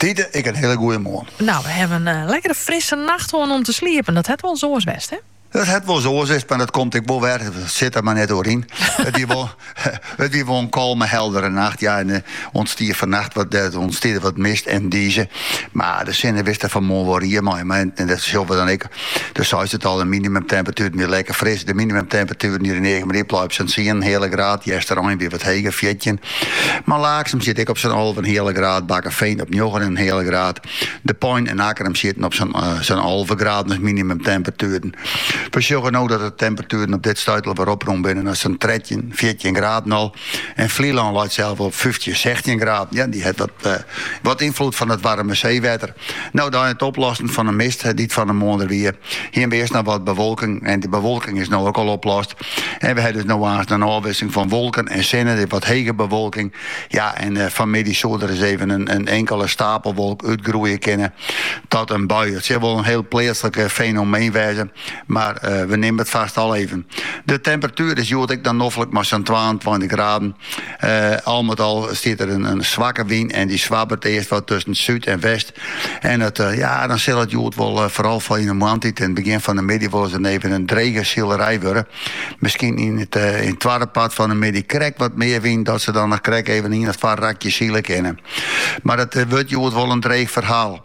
Tide, ek in hiele goeie moarn. Nou, we hawwe in lekkere frisse nacht hân om te sliepen. Dat hat wolris oars west, hè? Dat hat wolris oars west, mar dat komt ek wol wer. Sit der mar net oer yn. It wie wol, it wie wol in kalme, heldere nacht. Ja, en ûntstie fannacht wat, der ûntstie der wat mist en dize. Mar de sinne wist der fanmoarn wol rie mei. Mar en dat sille we dan ek Do seist it al, de minimumtemperatueren wienen lekker fris. De minimumtemperatuer hier yn Eagen Riepla op sa'n tsien en in heale graad. Easterein wie wat heger, fjirtjin. Mar Laaksum siet ek op sa'n alve en in heale graad, Bakkeveen op njoggen en in heale graad. De Pein en Akkrum sieten op sa'n sa'n alve graden as minimumtemperatueren. We sjogge no dat de temperatueren op dit stuit al wer oprûn binne nei sa'n trettjin, fjirtjin graden al. En Flylân leit selfs wol op fyftjin, sechstjin graden. Ja, dy hat wat wat ynfloed fan it waarme seewetter. No, nei it oplossen fan 'e mist dy't fan 'e moarn der wie, hiene we earst noch wat bewolking en dy bewolking is no ek al oplost. En we ha dus no aanst in ôfwisseling fan wolken en sinne, der is wat hege bewolking. Ja, en eh, fanmiddei soe der ris even in, in inkele stapelwolk útgroeie kinne tot in bui. It sil wol in hiel pleatslik eh, fenomeen wêze, mar eh, we nimmen it fast al even. De temperatuer is hjoed ek dan noflik mei sa'n 22 graden. Al met al stiet der in swakke wyn en dy swabbert earst wat tusken súd en west. En it, ja, dan sil it hjoed wol foaral foar yn de moarntiid en begjin fan de middei wol ris dan even in drege silerij wurde. Miskien yn it twadde part fan de middei krekt wat mear wyn dat se dan noch krekt even ien of twa rakjes sile kinne, mar it wurdt hjoed wol in dreech ferhaal.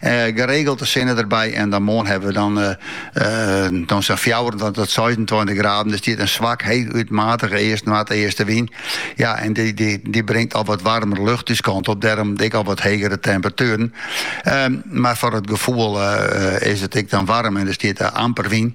Geregeld sinne der by en dan moarn hawwe we dan dan sa'n fjouwerentweintich tot seisentweintich graden. Der stiet in swakke, heechút matige east, noardeastewyn. Ja, en dy bringt al wat waarmere lucht ús kant op, dêrom ek al wat hegere temperatueren. Mar foar it gefoel is it ek dan waarm en der stiet amper wyn.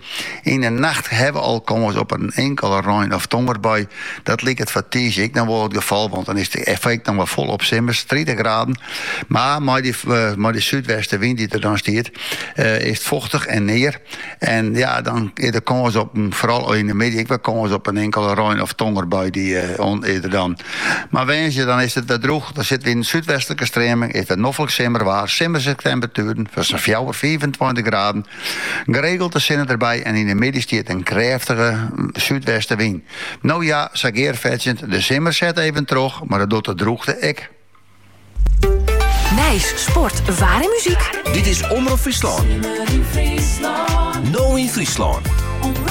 Yn 'e nacht ha we al kâns op in inkele rein of tongerbui. Dat liket foar tiisdei ek noch wol it gefal, want dan is it ek nochris folop simmers, tritich graden. Mar mei dy mei dy súdwestewyn dy't der dan stiet, is it fochtich en near. En ja, dan is der kâns op, foaral yn 'e middei, ek wer kâns op in inkele rein of tongerbui. Dy is der dan. Mar woansdei dan is it wer drûch. Dan sitte wy yn in súdwestlike streaming, is it wer noflik simmerwaar, simmerske temperatueren fan sa'n fjouwer, fiifentweintich graden. Geregeld sinne derby en yn de middei stiet der in krêftige súdwestewyn. No ja, sa gearfetsjend, de simmer set even troch, mar dat docht de drûchte ek. Nijs, sport, waar en muzyk. Dit is Omrop Fryslân. Simmer yn Fryslân. No yn Fryslân.